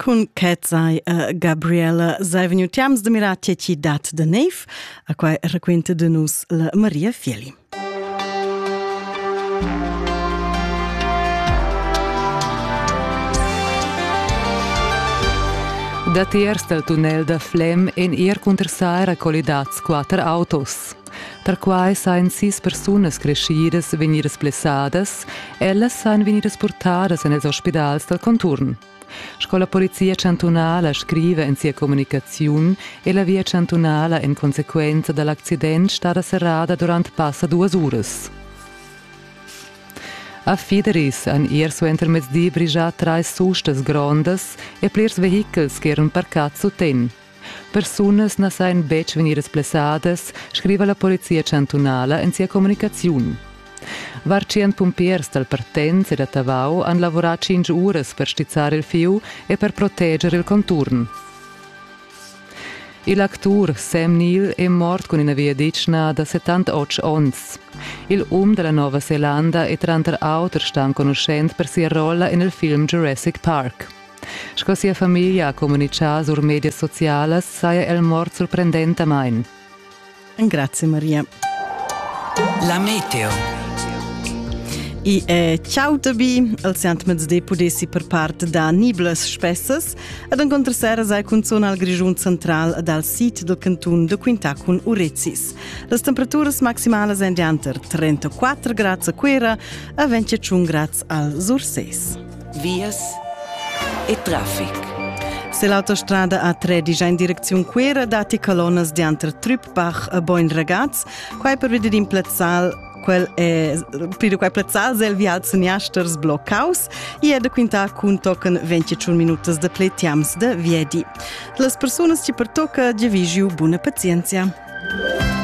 Cun Kezzai e Gabriela sei vegniu tiams de mirar tge ti dat de neiv, a quai raquenta de nus la Maria Fieli. Datiers dal tunnel da Flem èn er cunter Saira collidads quatter autos. Perquai sajan sis persunas creschidas vegnidas blessadas, ellas sajan vegnidas purtadas en ils ospidals dal conturn. Sco la Polizia chantunala scriva en sia communicaziun è la via chantunala en consequenza da l'accident stada serrada durant passa duas uras. A Fideris han ier suentermezdi brigià trais sustas grondas e plirs vehichels ch'eran parcads suten. Persunas na sajan betg vegnidas blessadas, scriva la polizia chantunala en sia communicaziun. Var tschient pumpiers dal Partenz e da Tavau han lavurà tschintg uras per stizzar il fieu e per proteger il conturn. Il actur Sam Neill è mort cun ina viaditschna da 78 onns. Il um da la Nova Zelanda è tranter auter stà enconuschent per sia rolla en il film Jurassic Park. Sco sia famiglia ha communitgà sur medias socialas saja el mort surprendentamain. Grazie Maria. La meteo. I è ciao tabi, al siant mezde pudessi per part da niblas spessas, ed encontr sera sai cunzon al Grischun central dal sid del cantun de Quintà cun Urezis. Las temperaturas maximalas èn dianter 34 grads a Cuera e 25 grads al Surses. vias e traffic. Se l'autostrada A3 digia in direcziun Cuera datti colonas dianter Trüppbach e Boin Ragaz, quai per vedir in plazzal quel è pride quai plazzal zel vial Seniasters bloccaus e è da quintar cun tochen 24 minutas de pletiams de viedi. Las persunas ci pertocca di vigiu buna pazienzia.